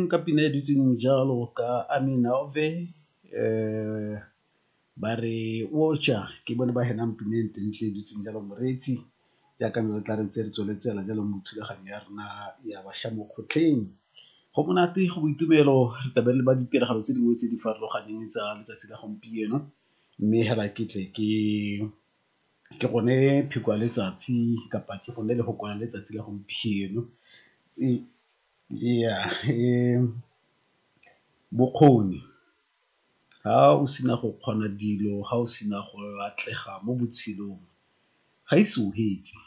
Ka pina e dutseng jalo ka Amina Ove ba re o ja ke bone ba henang pina e ntle ntle e dutseng jalo moreetsi jaaka ne re tla re ntse re tsweletse fela jalo mo thulaganyo ya rona ya bašwa mo kgotleng. Go monate go boitumelo re tlabe re le ba ditiragalo tse dingwe tse di farologaneng tsa letsatsi la gompieno mme hela ke tle ke ke gone pheko ya letsatsi kapa ke gone lefoko la letsatsi la gompieno . Ee, bokgoni ga o sena go kgona dilo ga o sena go atlega mo botshelong ga ise o fetse.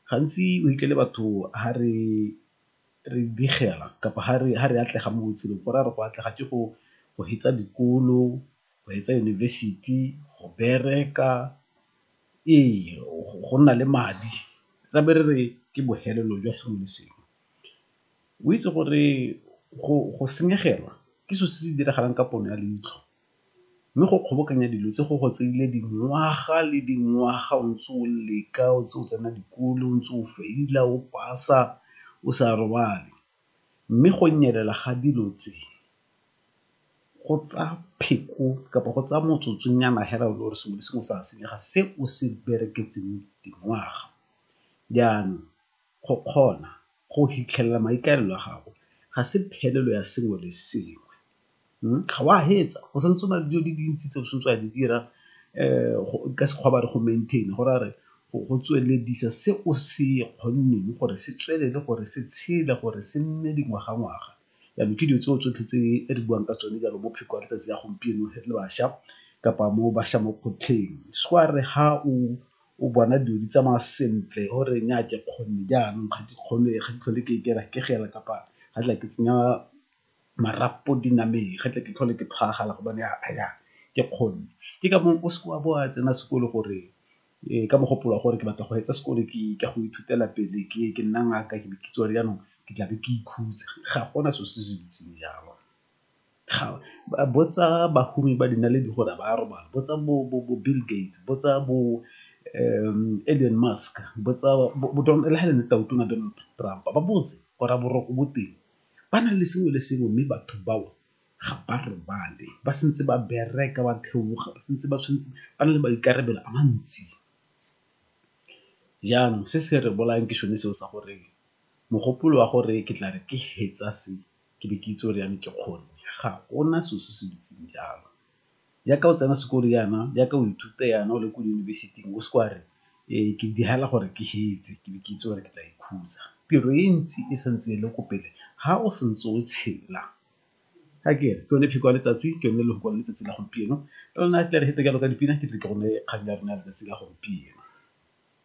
Gantsi o fitlhele batho ha re digela kapa ha re atlega mo botshelong go raya gore go atlega ke go fetsa dikolo, go fetsa yunibesithi, go bereka. Ee, go nna le madi ra be re re ke bofelelo jwa sengwe le sengwe. O itse gore go senyegelwa ke selo se se diragalang ka pono ya leitlho mme go kgobokanya dilo tse go go tseile dingwaga le dingwaga o ntse o leka o ntse o tsena dikolo o ntse o feila o pasa o sa robale mme go nyelela ga dilo tse. go tsa pheko kapa go tsaya motsotsonyana fela o le gore sengwe le sengwe sa senyega se o se bereketseng dingwaga. Jaanong go kgona go fitlhelela maikaelelo a gago ga se phelelo ya sengwe le sengwe, ga o a fetsa go sa ntse go na le dilo di le dintsi tse o tshwanetseng wa di dira ka Sekgowa ba re go maintain go raya gore go tsweledisa se o se kgonneng gore se tswelele gore se tshele gore se nne dingwaga-ngwaga Jaanong ke dilo tseo tsotlhe tse re buang ka tsone jaanong mo pheko ya letsatsi la gompieno re le bašwa kapa mo bašwa mo kgotlheng. So a re ha o bona dilo di tsamaya sentle o re nnyaa ke kgone jaanong ga ke kgone ga ke tlhole ke ikela ke gela kapa ga tla ke tsenya marapo dinameng ga tle ke tlhole ke tshwaragana gobane ke kgone. Ke ka moo o seke wa bo wa tsena sekolo gore Ee, ka mogopolo wa gore ke batla go etsa sekolo ke ka go ithutela pele ke ke nna ngaka ke be ke tswa jaanong ke tlabe ke ikhutsa ga gona selo se se dutseng jalo. Botsa bahumi ba dinaledi gore a ba a robala, botsa bo Bill Gates, botsa bo Elon Musk, botsa le ha e le nna tau tona Donald Trump ba botse gore a boroko bo teng ba na le sengwe le sengwe mme batho bao ga ba robale ba santse ba bereka ba theoga ba santse ba tshwanetse ba na le maikarabelo a mantsi. Jaanong se se re bolayang ke sone seo sa gore mogopolo wa gore ke tla re ke fetsa se ke be ke itse gore yanong ke kgone ga gona selo se se dutseng jalo. Jaaka o tsena sekolo yana, jaaka o ithuta yana o le ko diyunibesiting o se ke wa re ke digela gore ke fetse ke be ke itse gore ke tla ikhutsa. Tiro e ntsi e sa ntse e le ko pele ha o sa ntse o tshela. Ga ke re ke yone pheko ya letsatsi, ke yone lefoko la letsatsi la gompieno. Ke lone tla re jalo ka dipina ke tle ke go neye kgang ya rona ya letsatsi la gompieno.